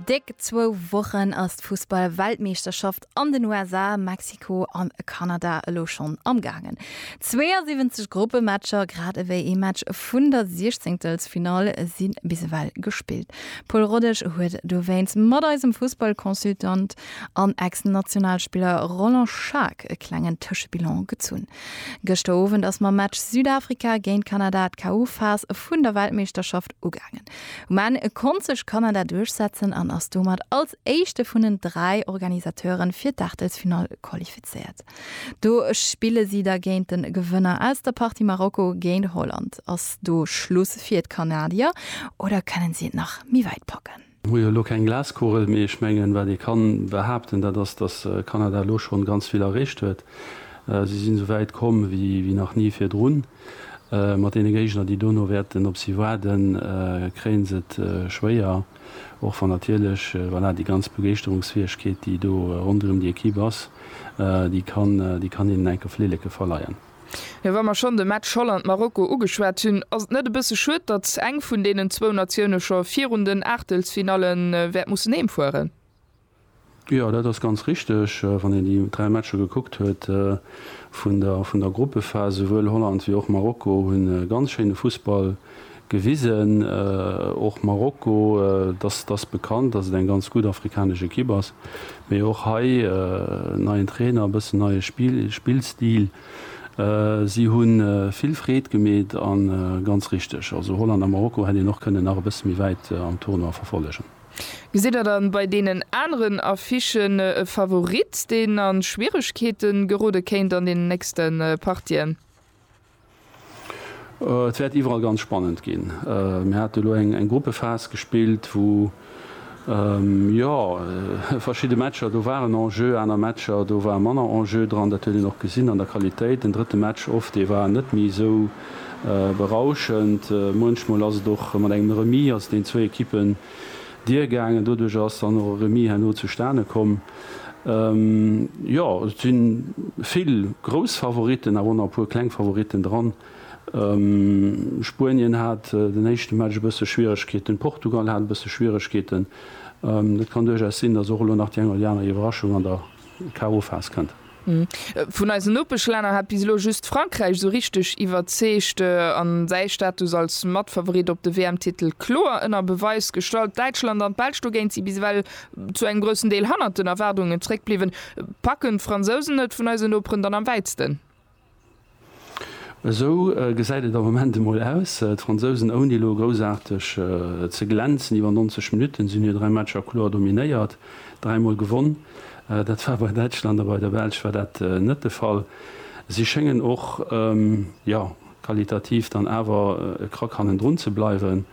Déck zwou Wochen ass d'Fussball-Weltmeeschterschaft an den USA, Mexiko an a Kanada elo schonn am gaangen. 72 Gruppematcher, grad ewéi ee Match vun der Siechzéngtelsfinall, si bis ewell gespillt. Paul Rodesch huet dowéinst mat eisem Fussball-Consultant an Ex-Nationalspiller Roland Schaack e klengen Tëschebilan gezunn. Gëschter Owend ass mam Match Südafrika géint Kanada d'KO-Phas vun der Weltmeeschterschaft Ugaangen. Um Enn konnt sech Kanada duerchsetzen an ass domat als éischte vun den dräi Organisateuren fir d'Aachtelsfinall qualifizéiert. Do spille si da géint de Gewënner aus der Partie Marokko géint Holland. Ass do Schluss fir d'Kanadier oder kënnen si et nach méi wäit packen? Hu jo elo keng Glaskugel, mee ech mengen, wat ee kann behaapten, dat ass, dass Kanada elo schonn ganz vill erreecht huet. Si sinn esou wäit komm wéi nach ni virdrun. Mat deene Géigner, déi dono wäerten op si waarden, kréien se et schwéier, och wann natierlech, voilà, déi ganz Begeeschterungsfäegkeet, déi do ronderëm déi Equipe ass, déi kann, déi kann hinnen enke Flilleke verleien. Jo, wa mer schonn de Match Holland-Marokko ugeschwat hunn, ass et net e bësse schued, datt eng vun deenen zwou Natioune scho virun den Aachtelsfinalle wäert mussen heem fueren? Jo, dat ass ganz richteg. Wann een déi dräi Matcher gekuckt huet vun der Gruppephas, souwuel Holland wéi och Marokko hu ganz schéine Fussball gewisen. Och Marokko, datt ass bekannt, datt et eng ganz gutt afrikanesch Ekipp ass, mee och hei neien Trainer, e bëssen neie Spillstil. Si hu vill Freed gemeet a ganz richteg, also Holland a Marokko hätt een och kënnen nach e bësse méi wäit am Tournoi verfollegen. Gesitt Der dann bei deenen aneren Affichen e Favorit, deen a Schwieregkeete gerode kéint an deenen nächste Partien? Et wäert iwwerall ganz spannend ginn. Mir haten elo eng Gruppephas gespillt, wou jo verschidde Matcher do waren en jeu, aner Matcher do war manner en jeu dran. Dat huet een och gesinn an der Qualitéit. Den drëtte Match of, dee war net méi esou berauschend. Muenchmol ass et och mat engem Remis, ass et den zwou Ekippen, Dier gaangen. Doduerch ass dann och e Remis herno zustane komm. Jo, et si vill grouss Favoritten, awer och nach e puer kleng Favoritten dran. Spuenien hat den éischte Match e bësse Schwieregkeeten, Portugal hat e bësse Schwieregkeeten. Et kann duerchaus sinn, datt och elo nach déi eng oder déi aner Iwwerraschung an der KO-Phas kënnt. Vun eisen Nopeschlänner hat bis elo just Frankräich esou richteg iwwerzeegt an säi Status als Matfavorit op de WM-Titel kloer ënner Beweis gestallt. Däitschland an d'Belsch dogéint si bis ewell zu engem groussen Deel hannert den Erwaardungen zeréckbliwwen. Packen d'Fransousen et vun eisen Noperen dann am wäitsten? Esou gesäit et am Moment emol aus. D'Fransousen, ouni elo groussaarteg ze glänzen, iwwer 90 Minutten sinn hir 3 Matcher kloer dominéiert, dräimol gewonn. Dat war bei Däitschland a bei der Belsch war dat net de Fall. Si schéngen och, jo, qualitativ dann awer e Krack hannendrun ze bleiwen.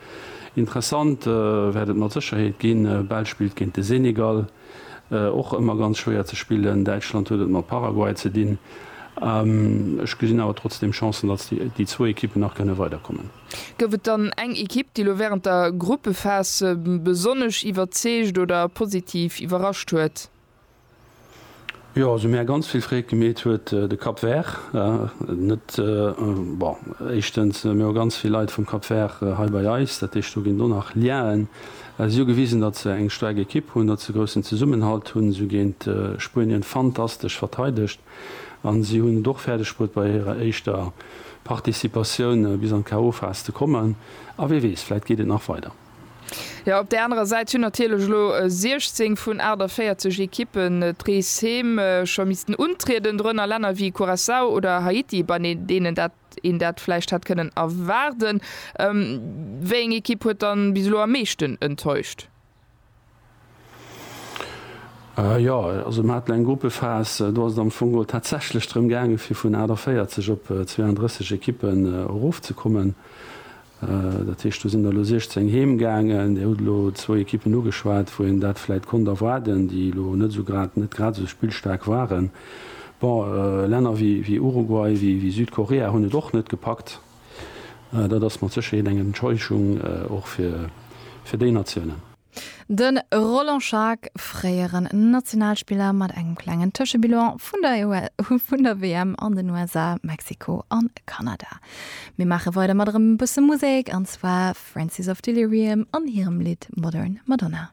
Interessant wäert et mat Sécherheet ginn, Belsch spillt géint de Senegal. Och ëmmer ganz schwéier ze spillen. Däitschland huet et mat Paraguay ze dinn. Ech gesinn awer trotzdeem Chancen, datt déi zwou Ekippen nach kënne weiderkommen. Gouf et dann eng Ekipp, déi elo wärend der Gruppephas besonnesch iwwerzeegt oder positiv iwwerrascht huet? Jo, also mir ganz vill Freed gemeet huet de Cap Vert net. Bon, éischtens mir hu ganz vill Leit vum Cap Vert hei bei eis, dat heescht do ginn do nach Liaen. Si hu gewisen, datt se eng staark Ekipp hunn, datt se groussen Zesummenhalt hunn. Si hu géint Spuenien fantastesch verteidegt a si hunn et och fäerdeg bruet bei hirer éischter Participatioun bis an d'KO-Phas ze kommen. A wee weess, vläit geet et nach weider. Jo, op där anerer Säit hunn natierlech elo 16 vun 48 Ekippen d'Reeshëm scho missten untrieden, dorënner Länner wéi Curaçao oder Haiti, bei deenen een dat vläicht hätt kënnen erwaarden. Wéi eng Ekipp huet dann bis elo am meeschten enttäuscht? Jo, also mer haten eng Gruppephas, do ass et am Fong geholl tatsächlech drëm gaangen, fir vun 48 op 32 Ekippen erofzekommen. Dat heescht, do sinn der elo 16 heem gaangen. Dir hutt elo zwou Ekippen ugeschwat, wou een dat vläicht konnt erwaarden, déi elo net esou grad, net grad esou spillstaark waren. Bon, Länner wéi Uruguay, wéi Südkorea hunn et och net gepackt. Dat ass mat Sécherheet eng Enttäuschung, och fir déi Natiounen. De Roland Schaack, fréieren Nationalspiller, mat engem klengen Tëschebilan vun der WM an den USA, Mexiko a Kanada. Mir maache weider mat erëm e bësse Musek, an zwar Francis of Delirium an hirem Lidd Modern Madonna.